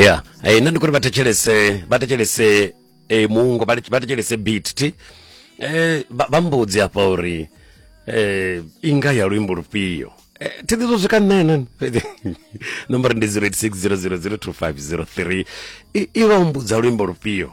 ya eh, nna ndi kuri vha thetshelese vha thetshelese eh, muungo vha vha thetshelese beat ti eh, vha vha mbudzi hafha uri eh, inga ya luimbo lufhio eh, thi ḓi zwo swika nṋena nomboro ndi 0860002503 i i vha humbudza luimbo lufhio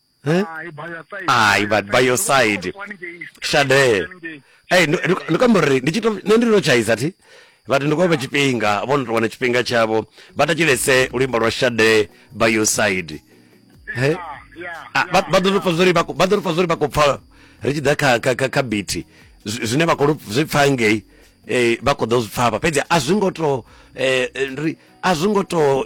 Eh? hai bioside Hai, but bioside. Ndo vha ndi ngei straight Shadee. haningei. Hey, ndi- ndi- ndi kamba uri ndi tshi to- nṋe ndi to tshaiza thi vhati ndi khou vha tshifhinga vho no tou wana tshifhinga tshavho vha tatshilese luimbo lwa shade by your side He? Yeah, yeah, Ah, vha yeah, vha ḓo yeah. ri pfa zwori vha khou- vha ḓo ri pfa zwori vha khou pfa ri tshi ḓa kha kha kha kha biti zwi- zwine vha khou lu- zwi pfa ngei eh, vha khou ḓo zwi pfa hafha fhedzi a zwi ngo to eh, eh, ri a zwi ngo to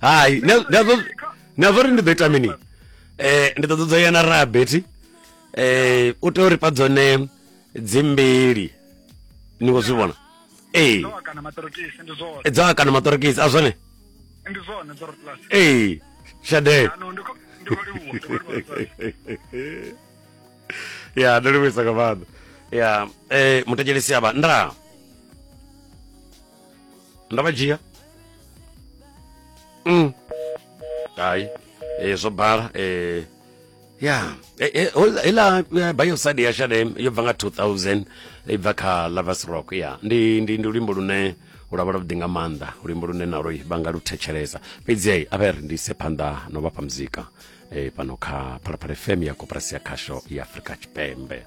hai na zwo ri ndi ḓo ita mini um ndi ḓo ṱoḓo ya na rabeti um u tea uri pa dzone dzimbili ni khou zwi vhona ee dzo akana maṱorokisi a zwone ee shadee ya ndo livhuisa nga maanḓa ya eh, muthetshelesi avha nda nda vha dzhia mm. hai eh, zwo bala eh, ya eh, eh, hol- heiḽa eh, bioside ya shadem yo bva nga 2000 i bva kha lovers rock ya ndi, ndi, ndi luimbo lune lwavha lwavhuḓi nga maanḓa luimbo lune naloi vha nga lu thetshelesa fhedzi hei a vha ri ndi ise phanḓa no vhafha muzika e, pano kha phalaphala fm ya koporasi ya khasho ya afrika tshipembe